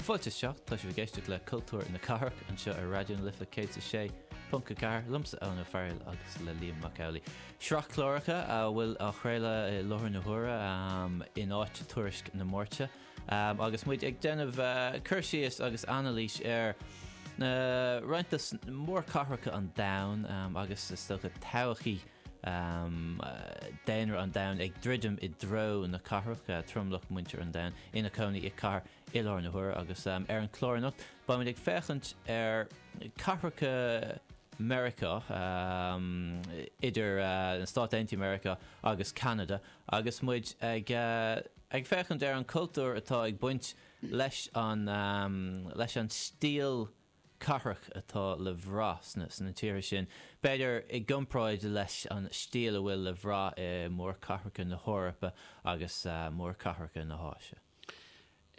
Fáilte isteach, tá sibh ag éisteacht le Cultúr na Cathrach anseo ar Raidió na Life 106.4 liomsa Eoin Ó Fearghail agus le Liam Mac Amhlaigh. Sraith cláracha a bhfuil á chraoladh i láthair na huaire in áit tuairisc na Máirte agus muid ag déanamh cur síos agus anailís ar roinnt de mhórchathracha an domhain agus is dócha todhchaí daonra an domhain ag druidim i dtreo na cathrach, tromlach muintir an domhain ina cónaí i gcathair i láthair na huaire agus ar an chlár anocht beimid ag féachaint ar cathracha Meiriceá, idir na Stáit Aontaithe Meiriceá agus Ceanada agus muid ag ag féachaint ar an cultúr atá ag baint leis an leis an stíl cathrach atá le bhraith sna tíortha sin, b'fhéidir, i gcomparáid leis an stíl a bhfuil le bhraith i mórchathracha na hEorpa agus mórchathracha na hÁise.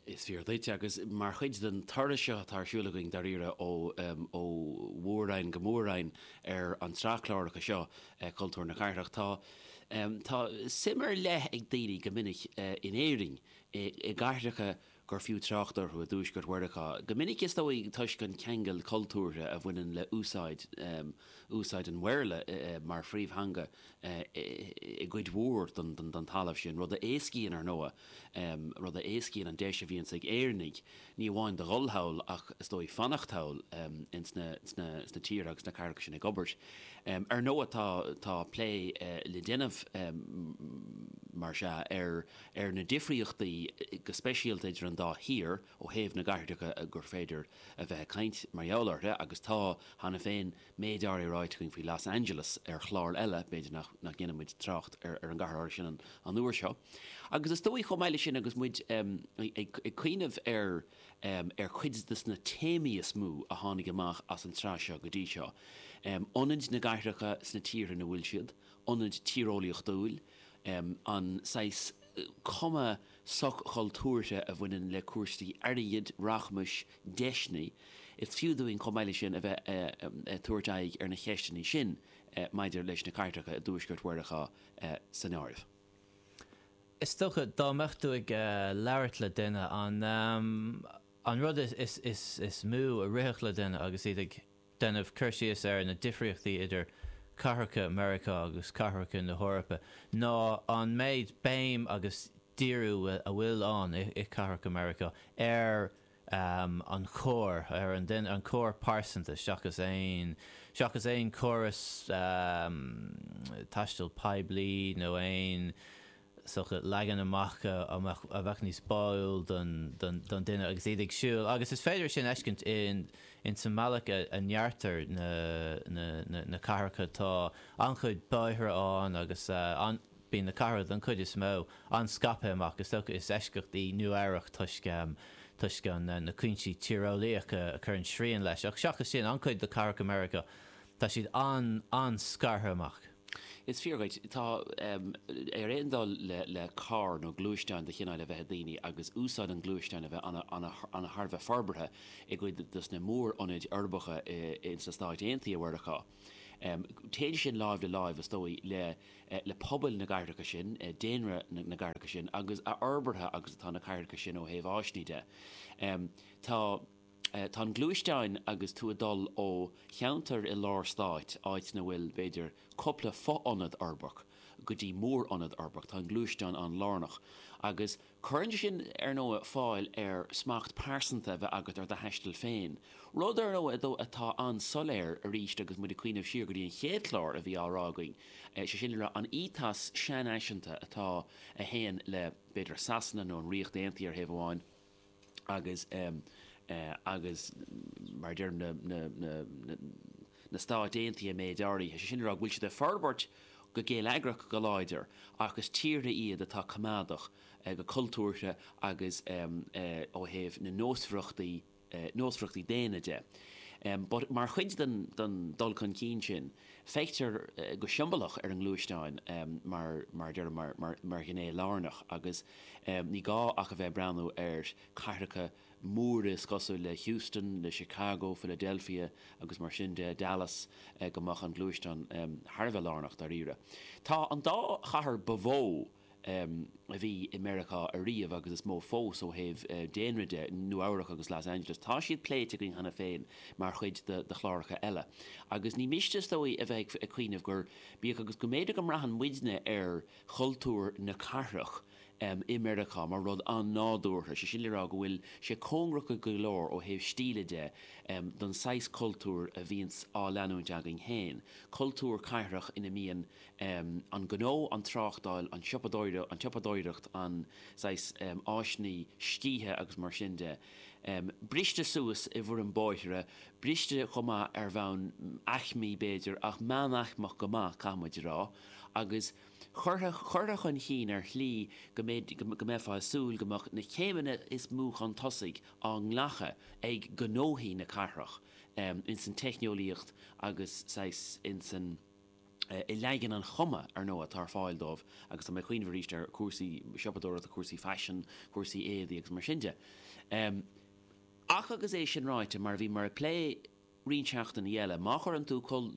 Is fíor duit, agus mar chuid den turas seo atá ar siúl againn, dáiríre, ó mhór-roinn go mór-roinn ar an tsraith cláracha seo, Cultúr na Cathrach, tá suim ar leith ag daoine, go minic, in Éirinn, i gcathracha gur fiú trácht orthu i dtuaisceart Mheiriceá, go minic is dóigh toisc an ceangal cultúrtha a bhaineann le úsáid an Bhéarla mar phríomhtheanga i gcuid mhór den talamh sin, rud a éascaíonn, ar ndóigh, rud a éascaíonn an deis a bhíonns ag Éireannaigh, ní amháin do dhul thall ach is dóigh fanacht thall insna tíortha agus sna cathracha sin ag obair. Ar ndóigh tá plé le déanamh, más ea, ar. ar na difríochtaí go speisialta idir an dá thír ó thaobh na gcathracha gur féidir a bheith ag caint mar gheall orthu agus tá, cheana féin, méid áirithe ráite againn faoi Los Angeles ar chlár eile, b'fhéidir nach ndéanfaidh muid trácht ar an gcathair áirithe sin an uair seo. Agus is dóigh, chomh maith leis sin, agus muid ag cuimhneamh ar chuid de na téamaí is mó a tháinig amach as an tsraith seo go dtí seo, ionad na gcathracha sna tíortha ina bhfuil siad, ionad tíreolaíochtúil, an saghas cuma soch-chultúrtha a bhaineann le cúrsaí airgid, rachmais, deiseanna, is fiú dúinn chomh maith leis sin a bheith ag tabhairt aghaidh ar na cheisteanna sin maidir leis na cathracha i dtuaisceart Mheiriceá san áireamh. Is dócha dá mbeadh tú ag labhairt le duine, an rud is mó a rithfeadh le duine agus iad ag. déanamh cur síos ar na difríochtaí idir cathracha Mheiriceá agus cathracha na hEorpa ná an méid béim agus díriú a bhfuil ann i cathracha Mheiriceá ar an charr, ar an duine, an charr pearsanta seachas aon, seachas aon chóras taistil poiblí nó aon. sochaí, leagan amach a bheadh níos báúil don duine agus iad ag siúl, agus is féidir é sin a fheiscint insan mbealach a ndeartar na cathracha. Tá an-chuid bóithre ann agus bíonn na cathracha, don chuid is mó, an-scaipthe amach. Is dócha is eisceacht í Nua Eabhrac toisc na cúinsí tíreolaíocha a chuireann srian leis, ach seachas sin, an-chuid de cathracha Meiriceá, tá siad an-scartha amach. Is fíor dhuit. Tá, ar aon dul le carr nó gluaisteán de chineál a bheith ag daoine agus úsáid an ghluaisteáin a bheith an-, thar a bheith forbartha i gcuid dos na mórionaid uirbeacha in sna Stáit Aontaithe Mheiriceá. Téann sin láimh le láimh, is dóigh, le pobail na gcathracha sin, daonra na gcathracha sin agus a fhorbartha agus atá na cathracha sin ó thaobh áiseanna de. Tá. Tá an gluaisteán agus tú ag dul ó cheantar i lár stáit, áit na bhfuil, b'fhéidir, cúpla fo-ionad uirbeach, go dtí mórionad uirbeach. Tá an gluaisteán an-lárnach. Agus cuireann sé sin, ar ndóigh, fáil ar smacht pearsanta a bheith agat ar do thaisteal féin. Rud, ar ndóigh, atá an-soiléir arís agus muid ag cuimhneamh siar go dtí an chéad chlár a bhí á rá againn, sé sin le rá an ethos seanfhaiseanta atá, a théann le, b'fhéidir, Sasana nó an Ríocht Aontaithe ar thaobh amháin, agus agus mar a déarfá na na na na na Stáit Aontaithe an méid áirithe, sé sin le rá go bhfuil siad ag forbairt go geilleagrach go láidir ach is tíortha iad atá coimeádach go cultúrtha agus ó thaobh na nósmhaireachtaí nósmhaireachtaí daonna de. But mar chuid den den dul chun cinn sin feictear go siombalach ar an ngluaisteán mar mar a déarfá mar mar mar ghné lárnach agus Ní gá ach a bheith ag breathnú ar chathracha móra cosúil le Houston, le Chicago, Philadelphia agus mar sin de, Dallas, go mbeadh an gluaisteán thar a bheith lárnach, dáiríre. Tá an dá chathair ba mhó a bhí i Meiriceá ariamh agus is mó fós ó thaobh daonra de, Nua-Eabhrac agus Los Angeles, tá siad pléite againn cheana féin mar chuid de chláracha eile. Agus ní miste, is dóigh, a bheith ag cuimhneamh gur, bíodh agus go mb'fhéidir go mbraitheann muidne ar chultúr na cathrach i Meiriceá mar rud an-nádúrtha, sé sin le rá go bhfuil sé cóngarach go leor ó thaobh stíle de don saghas cultúir a bhíonns á leanúint againn féin, cultúr cathrach ina mbíonn an gnó, an tráchtáil, an tsiopadóireacht, an saghas áiseanna scíthe agus mar sin de, briste suas i bhfoirm bóithre, briste chomh maith ar bhonn aicmí b'fhéidir, ach meánaicmeach go maith, caithfidh muid a rá. agus chuirfeadh, chuirfeadh chun chinn ar shlí go mbead, go mbeifeá ag súil go mbeadh na céimeanna is mó chun tosaigh á nglacadh ag gnóthaí na cathrach ins an teicneolaíocht agus saghas ins an, i leagan an chuma, ar ndóigh, atá ar fáil dóibh agus tá mé ag cuimhneamh aríst ar chúrsaí siopadóireachta, cúrsaí faisin, cúrsaí éadaí agus mar sin de. Ach agus é sin ráite, mar a bhí, mar a pléadh, roinnt seachtainí eile. Má chuireann tú cúl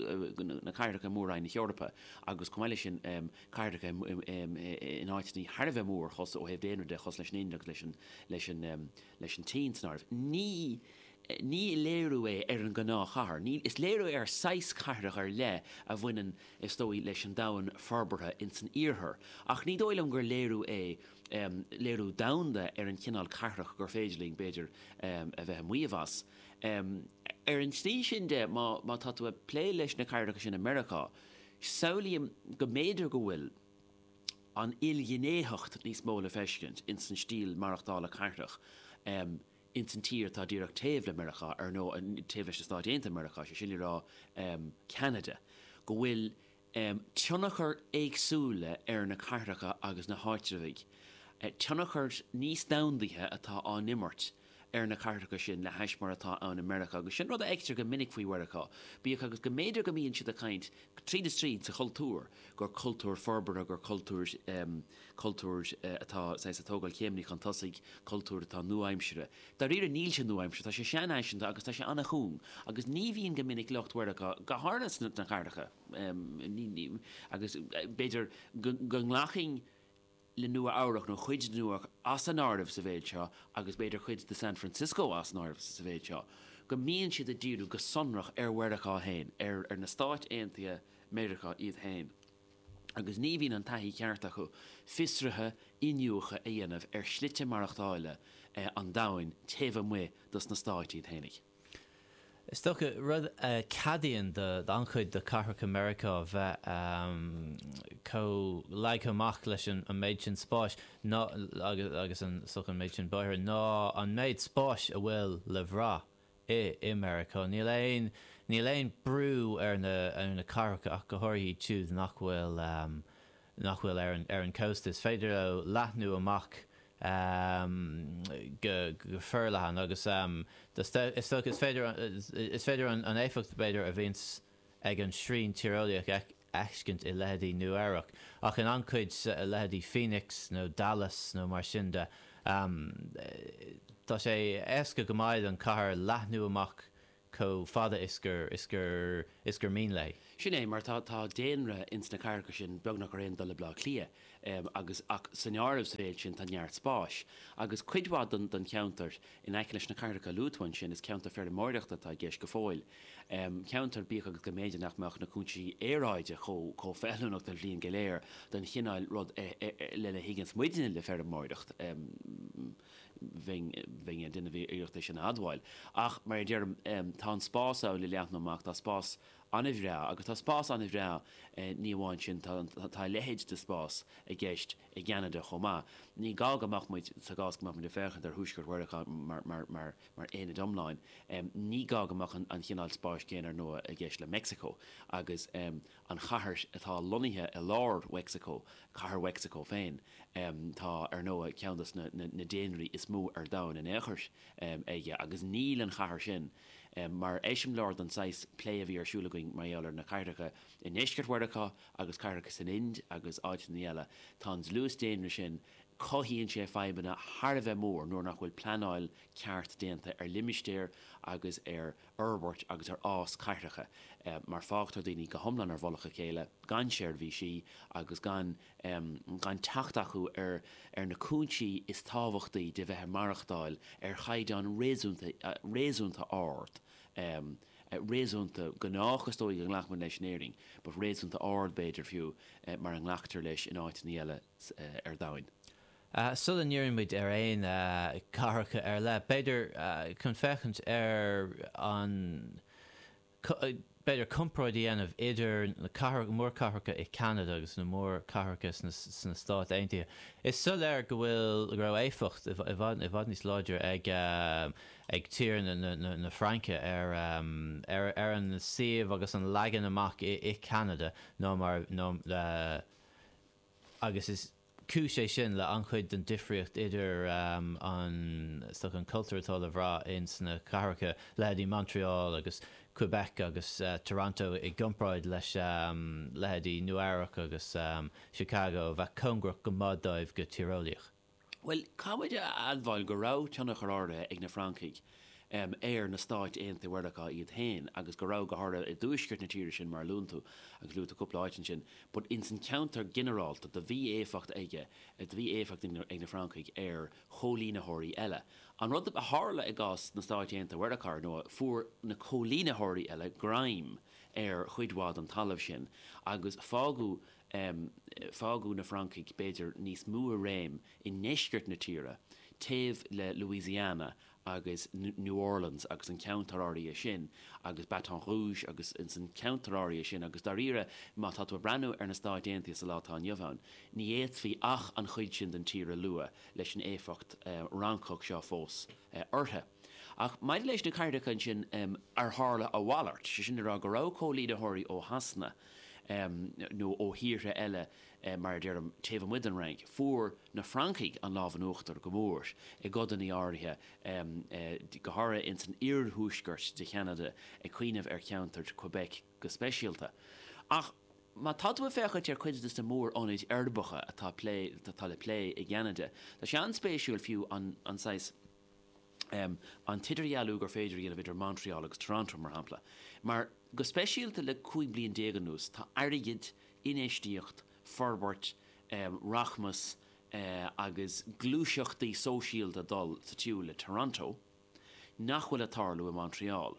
na cathracha i mór-roinn na hEorpa agus, chomh maith leis sin, cathracha in áiteanna thar a bheith mór, cosúil, ó thaobh daonra de, cosúil leis an Ind agus leis an tSín san áireamh, ní léiriú é ar an ngnáthchathair. Is léiriú ar saghas cathrach ar leith a bhaineann, is dóigh, leis an domhan forbartha ins an Iarthar. Ach ní dóigh liom gur léiriú é, léiriú domhanda ar an chineál cathrach gur féidir linn, b'fhéidir, a bheith ag maíomh as. Ar an tslí sin de, má tá tú ag plé leis na cathracha sin i Meiriceá, samhlaím go mb'fhéidir go bhfuil an ilghnéitheacht níos mó le feiscint ins an stíl maireachtála cathrach ins an tír atá díreach taobh le Meiriceá, ar ndóigh, taobh leis na Stáit Aontaithe Meiriceá, sé sin le rá, Ceanada, go bhfuil, tionchair éagsúla ar na cathracha agus na háitreabhaigh, tionchair níos domhandaithe atá á n-imirt ar na cathracha sin le hais mar atá ann i Meiriceá, agus sin rud a fheictear go minic faoi Mheiriceá, bíodh agus go mb'fhéidir go mbíonn siad ag caint, tríd is tríd, sa chultúr, gur cultúr forbartha, gur cultúr. cultúr atá, saghas, ag tógáil céimeanna chun tosaigh, cultúr atá nua-aimseartha. Dáiríre, níl sé nua-aimseartha, tá sé seanfhaiseanta agus tá sé an-chúng. Agus ní bhíonn go minic lucht Mheiriceá, go háirithe sna cathracha, agus b'fhéidir go nglacfainn le Nua-Eabhrac, nó cuid de Nua-Eabhrac, as an áireamh sa mhéid seo, agus b'fhéidir cuid de San Francisco as an áireamh sa mhéid seo, go mbíonn siad ag díriú go sonrach ar Mheiriceá fhéin, ar na Stáit Aontaithe Meiriceá iad fhéin. agus ní bhíonn an taithí ceart acu fiosruithe iniúchadh a dhéanamh ar shlite maireachtála an domhain taobh amuigh dos na Stáit iad fhéinig. Is dócha, rud a ceadaíonn do an-chuid de chathracha Meiriceá bheith chomh leagtha amach leis an méid sin spáis, ná, agus an méid sin bóithre, ná an méid spáis a bhfuil le bhrath i Meiriceá. Níl aon níl aon brú ar na ar na cathracha ach go háirithe iad siúd nach bhfuil nach bhfuil ar an ar an cósta. Is féidir leo leathnú amach go go forleathan agus is dócha is féidir is féidir an éifeacht b'fhéidir a bhaint ag an srian tíreolaíoch a fheiscint i leithéidí Nua-Eabhrac, ach in an-chuid leithéidí Phoenix nó Dallas nó mar sin de. Tá sé éasca go maith don chathair leathnú amach chomh fada is gur, is gur, is gur mian léi. Sin é, mar tá, tá daonra ins na cathracha sin beagnach ar aon dul le Bleá Cliath, agus, ach san áireamh sa mhéid sin tá neart spáis, agus cuid mhaith don, don cheantar In aice leis na cathracha a luaigh tú ansin, is ceantair feirmeoireachta atá i gceist go fóill. Ceantair, bíodh agus go mb'fhéidir nach mbeadh na cúinsí aeráide chomh feiliúnach an bhliain go léir don chineál rud lena dtuigeanns muidne le feirmeoireacht, bheinn ar dhuine a bhí iarracht é sin a admháil. Ach, mar a deirim, tá an spás ann le leathnú amach, tá spás an-bhreá agus tá spás an-bhreá, ní amháin sin, tá, tá a leithéid de spás i gceist i gCeanada chomh maith. Ní gá go mbeadh muid, sa gcás go mbeadh muid ag féachaint ar Thuaisceart Mheiriceá mar, mar, mar, mar aonad iomlán, ní gá go mbeadh an cineál spáis céanna, ar ndóigh, i gceist le Meicsiceo agus an chathair atá lonnaithe i lár Mheicsiceo, Cathair Mheicsiceo féin, tá, ar ndóigh, ceann de na, na, na daonraí is mó ar domhan in aon chathair aige agus níl an chathair sin, Mar eiseamláir don saghas plé a bhí ar siúl againn mar gheall ar na cathracha i ndeisceart Mheiriceá agus cathracha san Ind agus áiteanna eile, tá an dlús daonra sin, cothaíonn sé fadhbanna thar a bheith mór nuair nach bhfuil pleanáil cheart déanta ar limistéir agus ar fhorbairt agus ar fhás cathracha mar fágtar daoine go hiomlán ar mhullach a chéile, gan seirbhísí agus gan. gan teacht acu ar na cúinsí is tábhachtaí de bheith ag maireachtáil ar chaighdeán réasúnta ard, réasúnta gnách is dóigh a nglacfaidh muid leis in Éirinn, but réasúnta ard b'fhéidir fiú, mar a nglactar leis in áiteanna eile ar domhan. Sula ndíríonn muid ar aon chathracha ar leith, b'fhéidir, chun féachaint ar an. B'fhéidir comparáid a dhéanamh idir na mórchathracha i Ceanada agus na mórchathracha sna Stáit Aontaithe. Is soiléir go bhfuil, go raibh éifeacht i bhfad níos láidre ag tír na Fraince ar an suíomh agus an leagan amach i Ceanada ná mar a, agus is cúis é sin le an-chuid den difríocht idir an stoc, an cultúr atá le bhraith ins na cathracha, leithéidí Montreal agus Quebec agus Toronto i gcompráid leis leithéidí Nua-Eabhrac agus Chicago a bheadh cóngarach go maith dóibh go tíreolaíoch. Bhuel, caithfead a admháil go raibh tionchar áirithe ag na Francaigh ar na Stáit Aontaithe Mheiriceá iad féin, agus go raibh, go háirithe i dtuaisceart na tíre sin mar a luann tú, agus luaigh tú cúpla áit ansin, but ins an cheantar ginearálta, do bhí éifeacht ag, do bhí éifeacht ag na Francaigh ar chóilínitheoirí eile. An rud a tharla i gcás na Stáit Aontaithe Mheiriceá, ar ndóigh, fuair na cóilínitheoirí eile greim ar chuid mhaith don talamh sin, agus fágadh, um fágadh na Francaigh b'fhéidir níos mó i réim i ndeisceart na tíre, taobh le Louisiana agus New Orleans agus an ceantar áirithe sin agus Baton Rouge agus insan cheantar áirithe sin agus dáiríre má tá tú ag breathnú ar na Stáit Aontaithe sa lá atá inniu ann ní fhéadfaí ach an chuid sin den tír a lua leis an éifeacht Fhrancach seo fós orthu. Ach maidir leis na cathracha sin ar tharla a mhalairt, sé sin le rá go raibh cóilínitheoirí ó Shasana nó ó thíortha eile, mar a deirim, taobh amuigh den Fhrainc, fuair na Francaigh an lámh in uachtar go mór i gcodanna áirithe, go háirithe ins an iarthuaisceart de Cheanada, ag cuimhneamh ar cheantar Quebec go speisialta. Ach má tá tú ag féachaint ar chuid de na mór-ionaid uirbeacha atá le plé i gCeanada, tá sé an-spéisiúil fiú an saghas, an t-idirdhealú gur féidir a dhéanamh idir Montreal agus Toronto, mar shampla, mar, go speisialta le 15 bliain anuas, tá airgead, infheistíocht, forbairt, rachmas agus gluaiseachtaí sóisialta ag dul sa tsiúl le Toronto nach bhfuil ag tarlú i Montreal.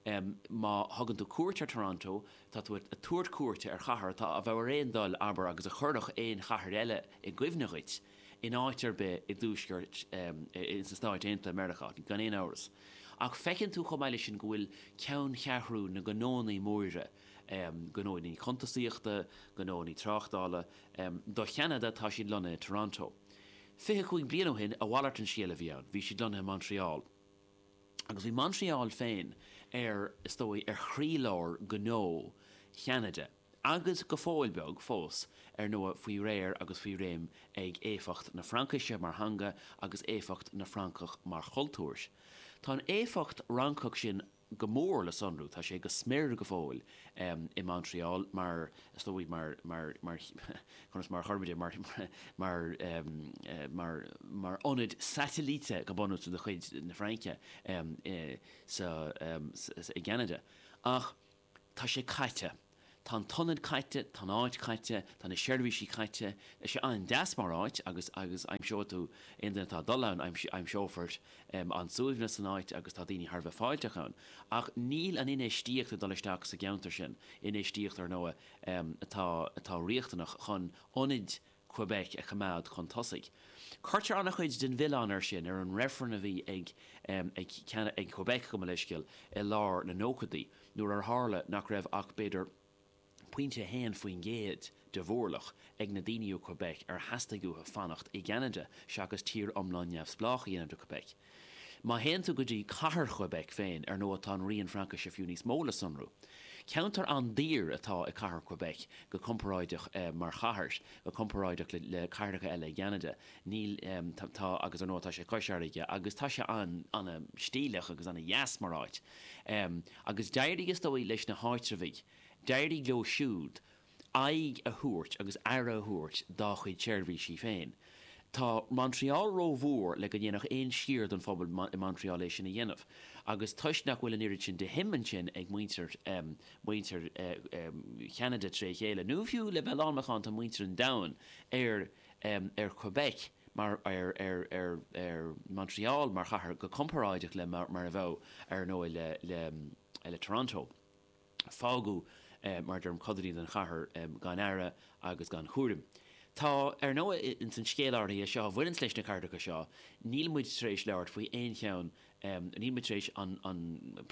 Má thugann tú cuairt ar Toronto, tá tú ag tabhairt cuairte ar chathair atá a bheith ar aon dul, abair, agus a chuirfeadh aon chathair eile i gcuimhne dhuit, in áit ar bith i dTuaisceart, in sna Stáit Aontaithe Meiriceá, gan aon amhras, ach feiceann tú chomh maith leis sin go bhfuil ceanncheathrú na ngnónnaí móra, gnónnaí cuntasaíochta, gnónnaí tráchtála, do Cheanada, tá siad lonnaithe i Toronto. Fiche cúig bliain ó shin, a mhalairt de scéal a bhí ann, bhí siad lonnaithe i Montreal. Agus bhí Montreal féin ar, is dóigh, ar chroílár gnó Cheanada. agus go fóill beag fós, ar ndóigh, faoi réir agus faoi réim ag éifeacht na Fraincise mar theanga agus éifeacht na Francach mar chultúr. Tá an éifeacht Fhrancach sin go mór le sonrú, tá sé go smior go fóill, i Montreal, mar, is dóigh, mar, mar, mar, conas mar a chuirfimis é, mar, mar, mar, mar ionad saitilíte, go bunúsach, de chuid na Fraince sa, i gCeanada. Ach. Tá sé caite. Tá an t-ionad caite, tá an áit caite, tá na seirbhísí caite. Tá sé an-deas mar áit agus, agus aimseoidh tú, aon duine atá ag dul ann, aimseofar an suaimhneas san áit agus tá daoine thar a bheith fáilteach ann. Ach níl an infheistíocht ag dul isteach sa gceantar sin, infheistíocht, ar ndóigh, atá, atá riachtanach chun ionaid Quebec a choimeád chun tosaigh. Cuirtear an-chuid den mhilleán air sin, ar an reifreann a bhí ag Quebec, gabh mo leithscéal, i lár na nóchaidí, nuair ar tharla nach raibh ach, b'fhéidir, pointe a haon faoin gcéad de mhórlach ag na daoine ó Quebec ar theastaigh uathu fanacht i gCeanada seachas tír iomlán neamhspleách a dhéanamh de Quebec. Má théann tú go dtí cathair Quebec féin, ar ndóigh, tá an rian Fraincise fiú níos mó le sonrú. Ceantar an-daor atá i cathair Quebec go comparáideach mar chathair, go comparáideach le cathracha eile i gCeanada. Níl, tá, agus ar ndóigh tá sé cois farraige agus tá sé an-stíleach agus an-deas mar áit. Agus d'éirigh, is dóigh, leis na háitreabhaigh, d'éirigh leo siúd, aghaidh a thabhairt agus aire a thabhairt dá chuid seirbhísí féin. Tá Montreal rómhór le go ndéanfadh aon sciar den phobal i Montreal é sin a dhéanamh, agus toisc nach bhfuil an oiread sin de shuim ansin ag muintir Cheanada tré chéile, nó fiú le bheith lán macánta, muintir an domhain, ar Quebec mar ar Montreal mar chathair go comparáideach le mar a bheadh, ar ndóigh, le Toronto. Fágadh mar a deirim, codanna den chathair gan aire agus gan chúram. Tá, ar ndóigh, ins an scéal áirithe seo a bhaineann leis na cathracha seo, níl muid tar éis labhairt faoi aon cheann, níl muid tar éis an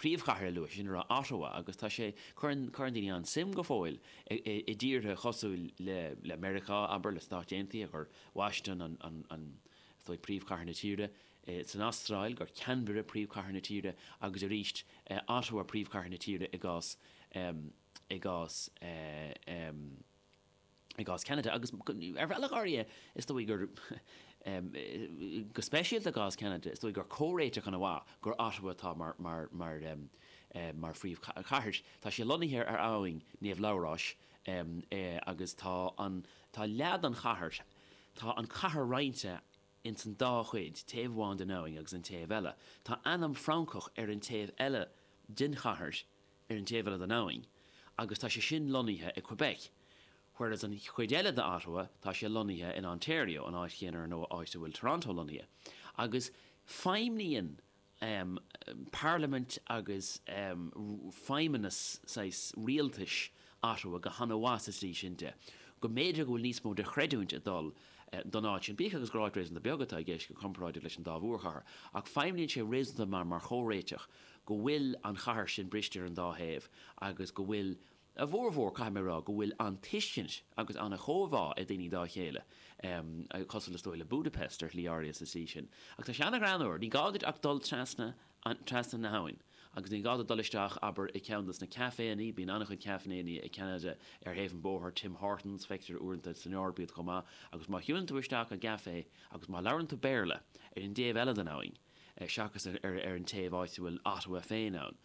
príomhchathair a lua, is é sin, Ottawa, agus tá sé, cuireann daoine an-suim go fóill i dtíortha cosúil le Meiriceá, abair, le Stáit Aontaithe, gur Washington an, is dóigh, príomhchathair na tíre. Is san Astráil gur Canberra príomhchathair na tíre agus arís Ottawa príomhchathair na tíre i gcás Cheanada, agus ar bhealach áirithe, is dóigh gur, go speisialta i gcás Cheanada, is dóigh gur comhréiteach ana mhaith gur Ottawa atá mar phríomhchathair. Tá sí lonnaithe ar abhainn Naomh Labhráis agus tá leath den chathair, tá an chathair roinnte ins an dá chuid, taobh amháin den abhainn agus an taobh eile. Tá ainm Francach ar an taobh eile den chathair, ar an taobh eile den abhainn, agus tá sé sin lonnaithe i Quebec, whereas an chuid eile de Ottawa, tá sé lonnaithe in Ontario, an áit chéanna ar ndóigh, áit a bhfuil Toronto lonnaithe. Agus feidhmníonn um parlaimint agus um feidhmeannas saghas rialtais Ottawa go han-mhaith sa tslí sin de go mb'fhéidir go bhfuil níos mó de chreidiúint ag dul don áit sin, bíodh agus gur áit réasúnta beag atá i gceist go comparáideach leis an dá mhórchathair. Ach feidhmníonn sé réasúnta mar mar chomhréiteach go bhfuil an chathair sin briste ar an dá thaobh agus go bhfuil an A bhformhór, caithfidh mé a rá go bhfuil an-tuiscint agus an-chomhbhá ag daoine dá chéile, em, cosúil is dóigh le Budapest ar shlí áirithe sa tslí sin. Ach tá sé an-ghreannmhar, ní gá duit ach dul trasna na habhainn agus ní gá duit dul isteach, abair, i gceann de sna caiféanna, bíonn an-chuid caiféanna i gCeanada ar thaobh an bóthar, Tim Hortons, feictear uaireanta san Eoraip iad chomh maith, agus má shiúlann tú isteach i gcaifé agus má labhrann tú Béarla ar an dtaobh eile den abhainn, seachas ar an taobh áit a bhfuil Ottawa féin ann.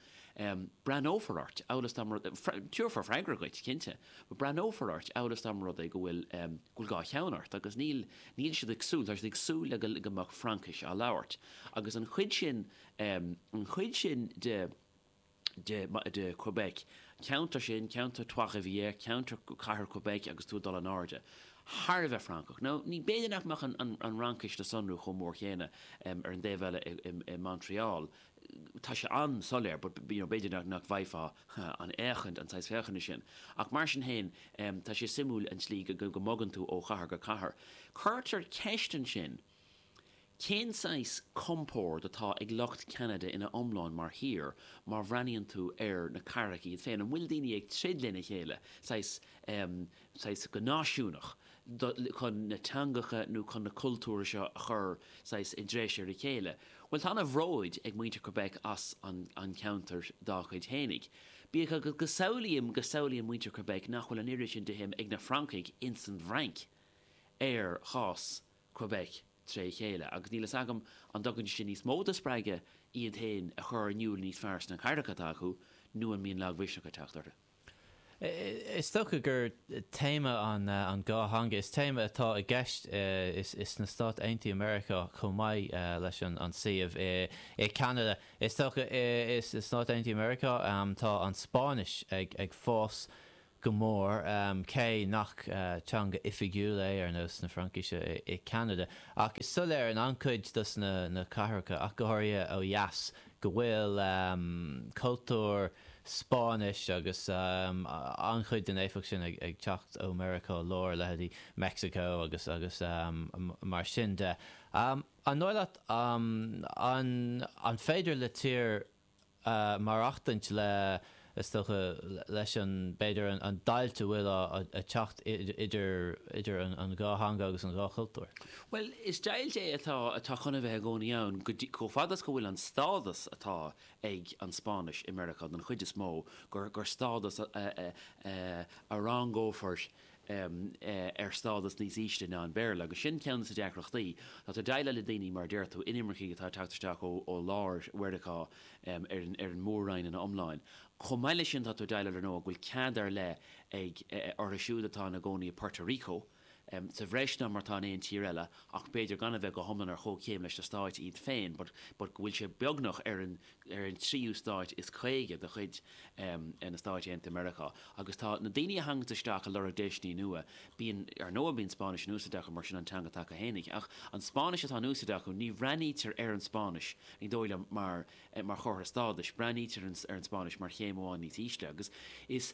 Breathnófar ort, amhail is dá tabharfar freagra dhuit, cinnte, breathnófar ort amhail is dá mba rud é go bhfuil, go bhfuil dhá cheann ort, agus níl. Níl siad ag súil, tá siad ag súil le go mbeadh Fraincis á labhairt, agus an chuid sin, an chuid sin de, de Quebec. Ceantar sin, ceantar Trois-Rivières, ceantar chathair Quebec agus tú ag dul in airde. Thar a bheith Francach. Nó b'fhéidir nach mbeadh an Fhraincis le sonrú chomh mór céanna ar an dtaobh eile i Montreal. Tá sé an-soiléir but you know b'fhéidir nach bhfaighfeá an fhéachaint, an saghas féachana sin. Ach mar sin féin, tá sé suimiúil an tslí go mbogann tú ó chathair go cathair. Cuirtear ceist ansin, Cén saghas compoird atá ag lucht Ceanada ina iomlán mar thír má bhreathnaíonn tú ar na cathracha iad féin? An bhfuil daoine ag troid lena chéile, saghas, em, saghas, go náisiúnach, do, chun na teangacha nó chun na cultúir seo a chur, saghas, i dtreis ar a chéile? Bhuel, tá ana bhróid ag muintir Quebec as an, an ceantar dá gcuid fhéinig. Bíodh is go samhlaím, go samhlaíonn muintir Quebec nach bhfuil an oiread sin de shuim ag na Francaigh insan bhFrainc ar chás na. Quebec tré chéile, agus níl fhios agam an dtugann sé sin níos mó de spreagadh iad féin a chur in iúl níos fearr sna cathracha atá acu, nó an mbíonn lagmhisneach ag teacht orthu? Is dócha gur téama an dhá theanga is téama atá i gceist sna Stáit Aontaithe Meiriceá chomh maith leis an suíomh i Ceanada. Is dócha sna Stáit Aontaithe Meiriceá tá an Spáinnis ag fás go mór, cé nach teanga oifigiúil é, ar nós na Fraincise, i Ceanada. Ach is soiléir in an-chuid dos na cathracha, ach go háirithe ó dheas, go bhfuil cultúr Spáinnis agus an-chuid den éifeacht sin ag teacht ó Meiriceá Láir, leithéidí Meicsiceo agus mar sin de. An dóigh leat, an féidir le tír maireachtaint le, is dócha, leis an, b'fhéidir, an deighilt a bhfuil ag teacht idir an dhá theanga agus an dhá chultúr? Bhuel, is deighilt é atá, atá chun a bheith i gcónaí ann, chomh fada is go bhfuil an stádas atá ag an Spáinnis i Meiriceá, den chuid is mó, gur stádas a rangófar um ar stádas níos ísle ná an Béarla, agus sin ceann de na deacrachtaí. Tá tú ag déileáil le daoine, mar a deir tú, inimircigh atá ag teacht isteach ó ó lár Mheiriceá um ar an ar an mór-roinn ina iomláin. Chomh maith leis sin, tá tú ag déileáil ar ndóigh, go bhfuil cead ar leith ag eh orthu siúd atá ina gcónaí i bPorto Rico, um sa bhreis ná mar atá in aon tír eile, ach b'fhéidir gan a bheith go hiomlán ar chomhchéim leis na Stáit iad féin, but go bhfuil sé beagnach ar an, ar an tríú stát is caoga de chuid na Stáit Aontaithe Meiriceá, agus tá na daoine a thaganns isteach a lorg deiseanna nua, bíonn, ar ndóigh, bíonn Spáinnis in úsáid acu, mar sin an teanga atá acu fhéinig, ach an Spáinnis atá in úsáid acu, ní bhreathnaítear ar an Spáinnis, ní dóigh liom, mar chomhartha stádais, breathnaítear ar an Spáinnis mar chéim amháin níos ísle, agus is.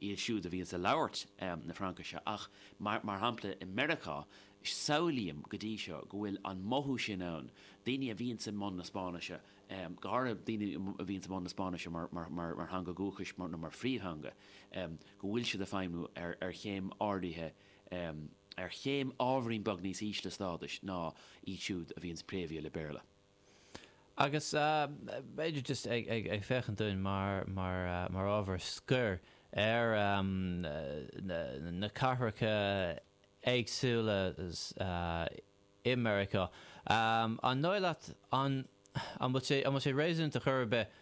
iad siúd a bhíonns a' labhairt na Fraincise, ach mar shampla i Meiriceá, samhlaím go dtí seo go bhfuil an mothú sin ann, daoine a bhíonns i mbun na Spáinnise, go háirithe daoine a bhíonns i mbun na Spáinnise mar theanga dhúchais nó mar phríomhtheanga, go bhfuil siad a' feidhmiú ar chéim áirithe, ar chéim ábhairín beag níos ísle stádais ná iad siúd a bhíonns préamhaithe le Béarla. Agus b'fhéidir, just ag féachaint dúinn mar ábhar scoir ar na cathracha éagsúla i Meiriceá, an dóigh leat, an bhfuil sé réasúnta chor ar bith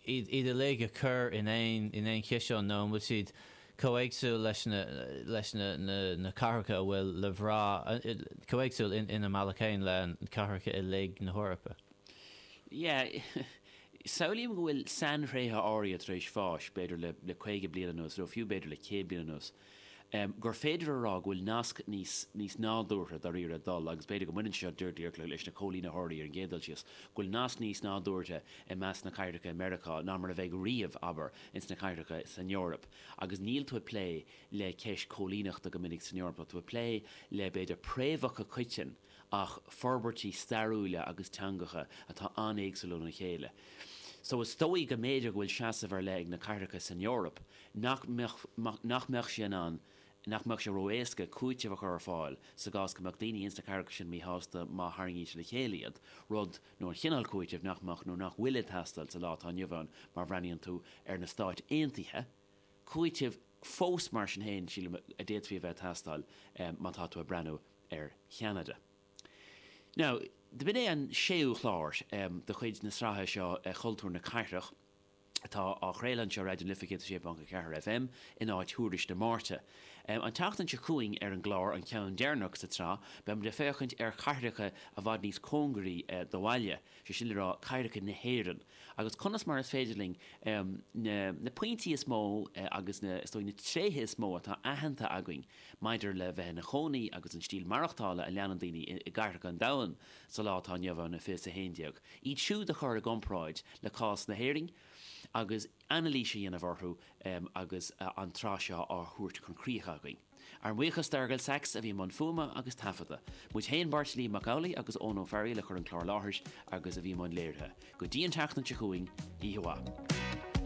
iad uilig a chur in aon chiseán nó an bhfuil siad chomh héagsúil leis na cathracha a bhfuil le bhraith, chomh héagsúil ina mbealach féin le cathracha uilig na hEorpa? Yeah, samhlaím go bhfuil sainthréithe áirithe tar éis fás, b'fhéidir le caoga bliain anuas, nó fiú b'fhéidir le céad bliain anuas, gur féidir a rá go bhfuil nasc níos níos nádúrtha dáiríre ag dul, agus b'fhéidir go mbaineann sé seo díreach leis na coilínitheoirí ar an gcéad dul síos, go bhfuil nasc níos nádúrtha i measc na cathracha i Meiriceá ná mar a bheidh riamh, abair, ins na cathracha san Eoraip. Agus níl tú ag plé le ceist coilíneachta go minic san Eoraip, tá tú ag plé le, b'fhéidir, préamhacha coiteann, ach forbairtí stairiúla agus teangacha atá an-éagsúil óna chéile so is dóigh go mb'fhéidir go bhfuil seasamh ar leith ag na cathracha san Eoraip nach mbeadh, nach mbeadh sé in ann, nach mbeadh sé ró-éasca cúiteamh a chur ar fáil sa gcás go mbeadh daoine ins na cathracha sin míshásta má tharraingítear le chéile iad, rud nó an chineál cúitimh nach mbeadh nó nach bhfuil ag teastáil sa lá atá inniu ann má bhreathnaíonn tú ar na Stáit Aontaithe cúitimh fós, mar sin féin, sílim, a d'fhéadfaí a bheith ag teastáil má tá tú ag breathnú ar Cheanada. Now, b'in é an séú chlár de chuid na sraithe seo Cultúr na Cathrach, atá á chraoladh anseo ar Raidió na Life 106.4 FM, in áit Thuairisc na Máirte. An tseachtain seo chugainn, ar an gclár, an ceann deireanach sa tsraith, beimid ag féachaint ar chathracha i bhfad níos cóngaraí do bhaile, sé sin le rá, cathracha na hÉireann. agus conas mar is féidir linn na pointí is mó agus na, is dóigh, na tréithe is mó atá aitheanta againn maidir le bheith ina chónaí agus an stíl maireachtála a leanann daoine i gcathracha an domhain sa lá atá inniu ann, fiche is a 11, iad siúd a chur i gcomparáid le cás na hÉirinn agus anailís a dhéanamh orthu agus an tsraith seo á thabhairt chun críche againn. Ár mbuíochas d'Fhearghal Saxe a bhí i mbun fuaime agus taifeadta. Muid féin, Beairtlín Mac Amhlaidh agus Eoin Ó Fearaíl a chuir an clár i láthair agus a bhí i mbun léirithe. Go dtí an tseachtain seo chugainn, oíche mhaith.